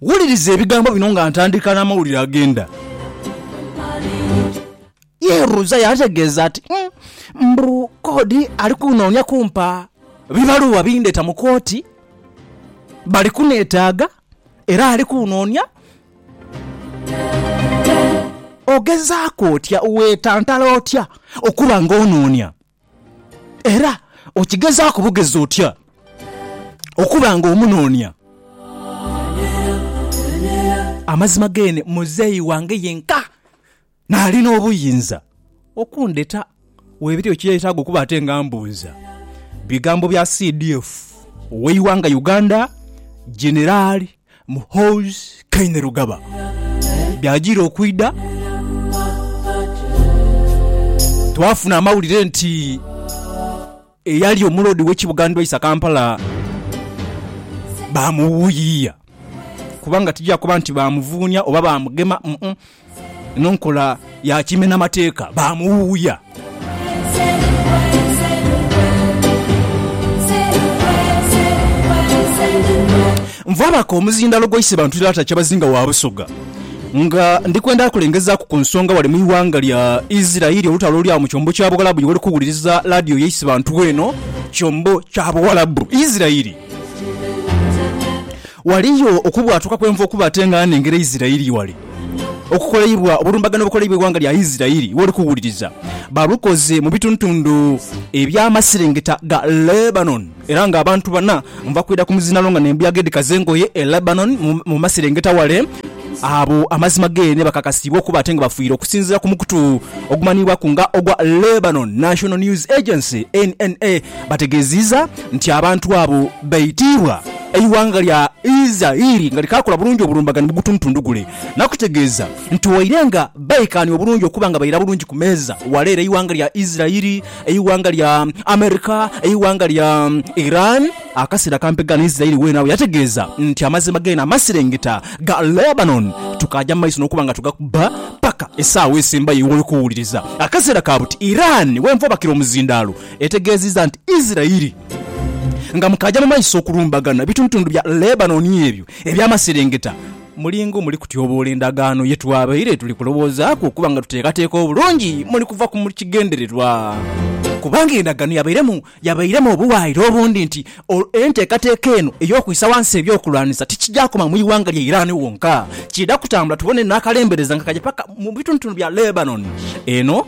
Wuliriza ebigambo bino nga ntandika n'amawulire agenda. Yeruza yantegeeza ati, Mbu kodi ali kunoonia kumpa bibaluwa bindeeta mu kooti. Bali kuneetaaga era ali kunoonia. Ogezaaku otya, weetantala otya okuba ng'onoonia? Era okigezaaku bugezi otya okuba nga omunoonia? Amazima geene, muzeeyi wange yenka n'alina obuyinza okundheta webiri ekyetaaga okuba ate nga mbuuza. Bigambo bya CDF ow'eighanga Uganda Jenerali. Muhoozi Kainerugaba byajiire okwidha, twafuna amawulire nti eyali omuloodi w'ekibuga Ndwaisa Kampala baamuwuyiia kubanga tija kuba nti baamuvuunia oba baamugema. Eno nkola ya kimena mateeka baamuwuuya. Nva baka omuzindaalo gwa Isebantu Iraata Kyabazinga wa Busoga nga ndi kwenda kulengezaaku ku nsonga wale mu ighanga lya Isiraeli olutalo olya mu kyombo kya Buwalabu ye wali kuwuliriza laadiyo ya Isebantu w'eno kyombo kya Buwalabu. Isiraeli. Waliyo okubwatuka kwe nva okuba ate nga nnengera Isiraeli wale. Okukoleibwa obulumbaganho obukoleibwa eighanga lya Isirairi woli kuwuliriza, balukoze mu bitundhutundhu eby'amaserengeta ga Lebanon, era nga abantu bana nva kwidha ku muzinano nga n'embuyaga edhikaza engoye e Lebanon mu maserengeta wale. Abo amazima geene bakakasiibwa okuba ate nga bafiire okusinziira ku mukutu ogumanhiibwaku nga ogwa Lebanon National News Agency, NNA, bategeeziiza nti abantu abo baitiibwa. Eighanga lya Isiraeli nga likaakola bulungi obulumbaganhi mu gutundutundu gule, nakutegeeza nti waire nga baikaanhi obulungi okuba nga baira bulungi ku meeza, wala ere eighanga lya Isiraeli, eighanga lya America, eighanga lya Iran. Akaseera kampegaana Isiraeli weena we yategeeza nti amazimba geena amaserengeta ga Lebanoni tukaaja mu maiso n'okuba nga tugakubba paka esaawa esembayo ey'okuwuliriza akaseera ka buti. Iran, wenva obakira omuzindaalo, etegeezizza nti Isiraeli, Nga mukaaja mu maiso okulumbagana ebitundutundu bya Lebanoni ebyo eby'amaserengeta, muli ng'omuli kutyoboola endagaano ye twabaire tuli kulowoozaaku okuba nga tuteekateeka obulungi, muli kuva ku kigendererwa. Kubanga endagaano yabairemu yabairemu obuwaayiro obundi nti enteekateeka eno ey'okwisa wansi eby'okulwanisa tikija koma mu ighanga lya Iran wonka. Kiidha kutambula tubone n'akalembereza nga kaja paka mu bitundutundu bya Lebanoni eno.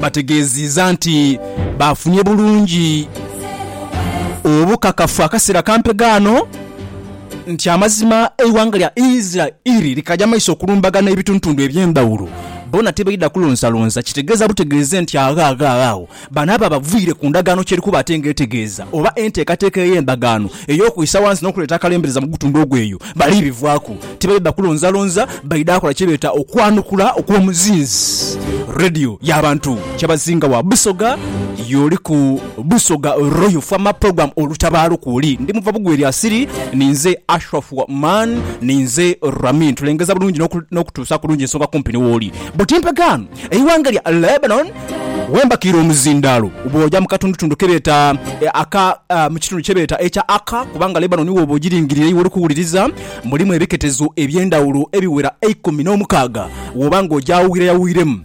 Bategeziiza nti baafunye bulungi obukakafu akaseera kampe ghano nti amazima eighanga lya Isiraeli likaja maiso okulumbagana ebitundutundu eby'endhawulo bona tibaidha kulonzalonza kitegeeza butegeeze nti agho agho banaaba bavaire ku ndagaano kyeri kuba ate ng'etegeeza oba enteekateeka ey'endagaano ey'okwisa ghansi n'okuleeta akalembereza mu gutundu ogwo eyo bali bivaaku. tibaidha kulonzalonza, baidha kola kye beeta okwanukula okw'omuzinzi, Radio, y'abantu kyabazinga wa Busoga y'oli ku Busoga Royal Farmer Program Olutabaalo kw'oli. Ndi muva bugwa erya Siri, ninze Ashraf wa Oman, ninze Ramin. Tulengeza bulungi n'oku, n'okutuusa ku lungi ensonga kumpi ni w'oli. Buti mpegaano, eighanga lya Lebanon, wembakiire omuzindaalo, bw'oja mu katundutundu ke beeta aka, mu kitundu kye beeta ekya Akka, kubanga Lebanon w'oba ogiringirire y'oli kuwuliriza, Mulimu ebiketezo eby'endhawulo ebiwera eikumi n'omukaaga wooba nga ogyawuuyireyawuuyiremu.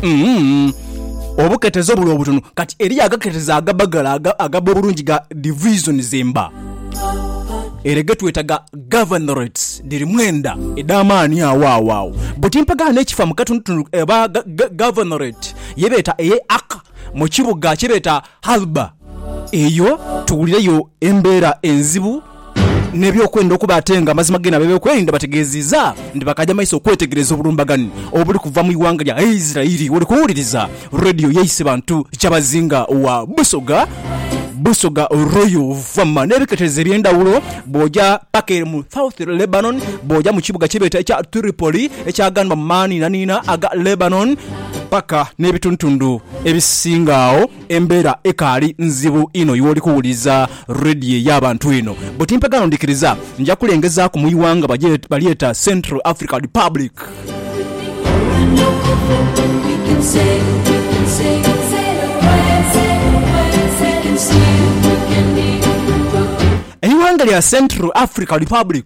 Umm obuketezo bule obutono kati eriyo agaketezo agabagala aga, agaba obulungi ga divisions emba ere getweta ga governorates dhiri mwenda edh'amaani agho agho agho buti mpagala n'ekifa mu katundutundu eba ga, ga, governorate ye beeta ey'e Akka mu kibuga kye beeta Halba, Eyo tuwulireyo embeera enzibu n'ebyokwerinda okuba ate nga amazima g'eno ab'ebyokwerinda bategeeziiza nti bakaja maiso okwetegereza obulumbaganhi obuli kuva mu ighanga lya Isirairi woli kuwuliriza Radio yaise Bantu Kyabazinga owa Busoga, Busoga Royal Vama n'ebiketezo eby'endhawulo bw'oja paka ere mu South Lebanon bw'oja mu kibuga kyebeeta ekya Tripoli ekyaganibwa mu maaniinaniina aga Lebanon paka n'ebitundutundu Ebisinga agho embeera ekaali nzibu inho iwe oli kuwuliriza Radio ey'abantu eno. Bwe timpegha ndhikiriza, nja kulengezaaku mu ighanga balyeta Central Africa Republic. Eighanga lya Central Africa Republic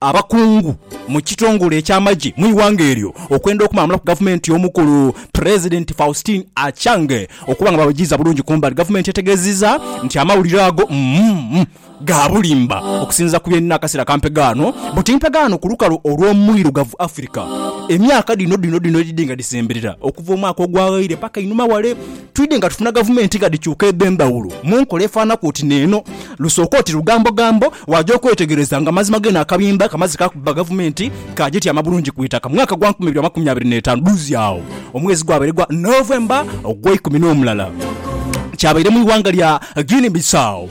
Abakungu mu kitongole eky'amagye mu ighanga eryo okwenda okumaamula ku gavumenti omukulu Pulezidenti Faustin Archange okuba nga babajiiza bulungi kumbali, gavumenti etegeziza nti amawulire ago ga bulimba okusinziira ku bye nina akaseera kampegaano buti mpegaano ku lukalu olw'omwirugavu Africa emyaka dhino dhino dhino edhidhi nga dhisemberera okuva omwaka ogwaghaire paka einhuma wale. twidhe nga tufuna gavumenti nga dhikyuka edh'endhawulo mu nkola efaanaku oti n'eno. Lusooke oti lugambogambo, waaja okwetegereza nga mazima g'eno akabimba kamaze kaakubba gavumenti kaagityama bulungi ku itaka mu mwaka gwa nkumi ibiri amakumi abiri n'etaanu dhuuzi agho omwezi gwabaire gwa Novemba ogweikumi n'omulala. Kyabaire mu ighanga lya Guinea Bissau.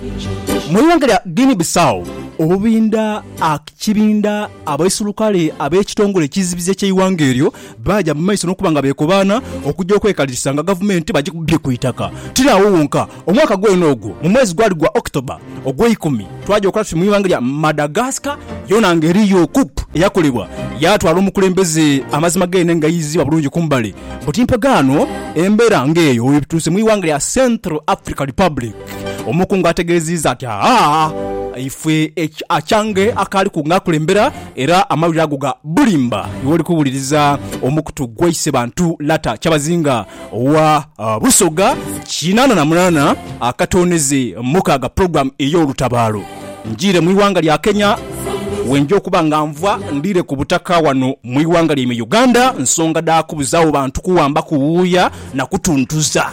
Mu ighanga lya Guinea Bissau, obubinda akibinda abaisulukale ab'ekitongole ekizibizi eky'eighanga eryo, Baaja mu maiso n'okuba nga beekobaana okuja okwekaliriza nga gavumenti bagibbye ku itaka. Tiri agho wonka, omwaka gwene ogwo mu mwezi gwali gwa October, ogweikumi, twaja okola tuti mu ighanga lya Madagascar yoona nga eriyo coup eyakolebwa yaatwala omukulembeze. Amazima geene ngaiziibwa bulungi ku mbale buti mpegaano. Embeera nga eyo bwetuuse mu ighanga lya Central Africa Republic, omukungu ategeeziiza ati, Haa, ife Achange akaaliku nga akulembera, Era amawulire ago ga bulimba. Iwe oli kuwuliriza omukutu gwaise bantu Lata Kyabazinga owa Busoga kinana na munana akatooneze mukaaga program ey'olutabaalo. Njiire mu iwanga lya Kenya wenja okuba nga nva ndiire ku butaka wano mu iwanga lyaimwe Uganda nsonga dha kubuzaawo bantu kuwambaku wuuya na kutuntuza.